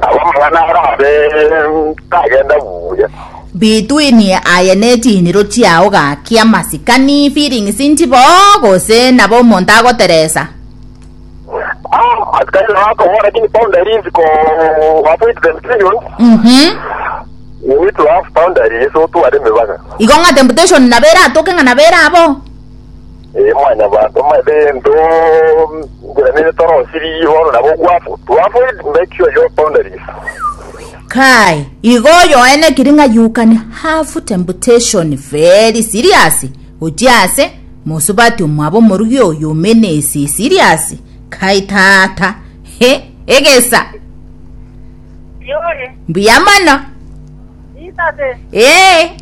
Nabo amang'ana aya abe tagenda buya. Between aye ne chiniro chiao gakia masikani feelings nchibo gose nabo omonto agoteresa. Ah, askari nabo akobora lakini boundaries ko avoid them period. Mhm. You need to have boundaries otware emebaka. Igo ng'a temptation nabo eratoke ng'a nabo erabo. Ee, mwanyabanto, maete gento ngeranere torosirie bono nabo ogwafo. To avoid make sure your boundaries. Kai, igo oyoenekiri ng'a you can have temptation very serious gochia ase mosubati omwabo omorugi oyo omenesi serious. Kai tata. He, egesa. Yore. Mbuya mono. Isase. Ee.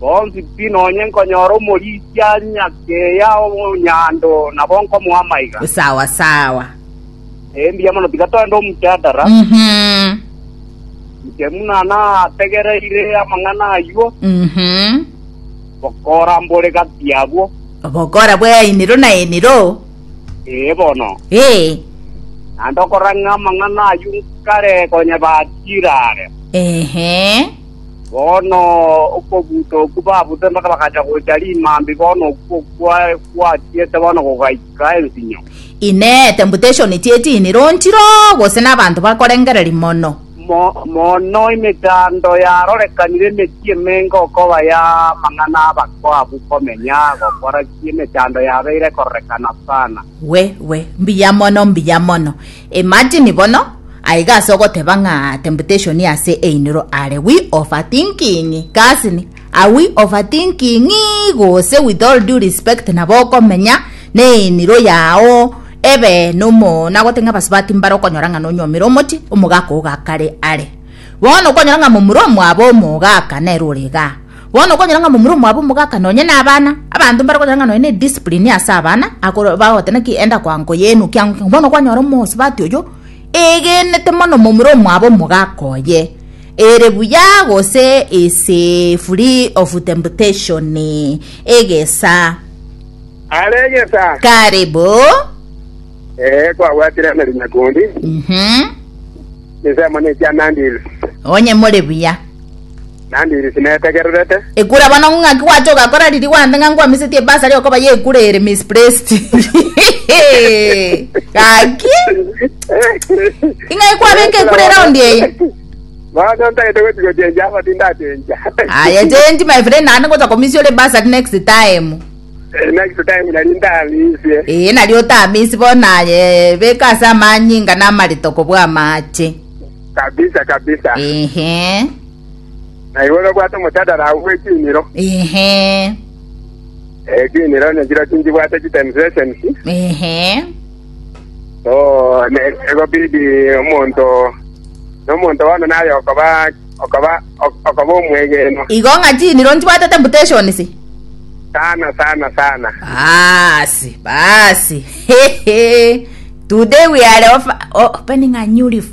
Bonsi pi nonye nkonyora omorisia nyakeya omonyando nabo nkomoa amaiga. Sawa sawa. Mbuya mono, tiga togende omchadara. Mhm. Inche buna nategereire amang'ana ayio, Mhm. bokora mbore gati yabwo. Obokora bwe eniro na eniro. Ee bono. Ee. Naende okorora ng'a amang'ana ayio nkare konya bachire are. Ehe. Bono okobuta okwo babute mpaka bagacha gocha rimambi, bono okwo kwa- kwatiete bono gogaika ensinyo. Inee, temptation chi'edini ronchiro, gose nabanto bakorengereria mono? Mo- mono emechando yarorekanire emechie emenga okoba y'amang'ana abakwo abwo komenya gokora ki emechando yabeire ekororekana sana. We, we, mbuya mono, mbuya mono. Imagine bono, aiga ase ogoteba ng'a temptation ase einiro are we overthinking cousin, are we overthinking gose with all due respect nabo okomenya neiniro yao ebe nomo nagote ng'a abasubati mbare okonyora ng'a nonyuomire omochi omogaka ogakare are bono okonyora ng'a momura omwabo omogaka nere ore igaa. Bono okonyora ng'a momura omwabo omogaka nonye nabana, abanto mbare gokora ng'a nonye ne discipline ase abana, akoro bagote naki enda kwa nko yenu kia nko. Bono kwanyora omosubati oyo egenete mono momura omwabo omogaka oye, ere buya gose is free of temptation egesa. Are egesa. Karibu. Ee, kwabwatire amarinya kondi. Mhm. Ensemo ne ekianandil. Onye more buya. Naende inche tinetegererete. Ekura abana ng'o ng'aki gwacha ogakora riria gwambe ng'a nkwamisetie bursary okoba ye ekura ere misplaced gaki ing'ai kwabeka ekura eround eye Bono ntagete gochi gochenja aba tindachenja. aya change my friend naende ngocha komisia ore bursary next time Eh, Next time nari ntamisie. ee nari otamisi bono aye beka ase amanyinga namarito kobwa amache Kabisa kabisa. ehe Naigwe nobwate omotadara agwo bwe chiniro. Ehe. Eh, chiniro nechiro chinchibwate chitensetions. Ehe. So, ne- egobidi omonto nomonto bono naye okoba okoba ok- okoba omwegeno Igo ng'a chiniro nchibwate temptations. sana sana sana. Basi, basi. Hehe. Today we are off, opening a new leaf.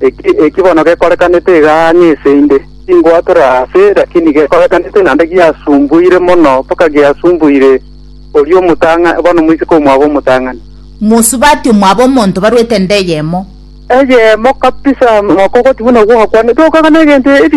Eki eki bono gekorekanete iga ang'e ase inde, tingwatora aase, lakini gekorekanete naende giasumbuire mono, mpaka giasumbuire oria omotang'a, bono moiseke omwabo omotang'ani. Mosubati omwabo omonto baruete ende eyemo. Eyemo kabisa, mokogotia buna gwakwanete, okagana egento ebi.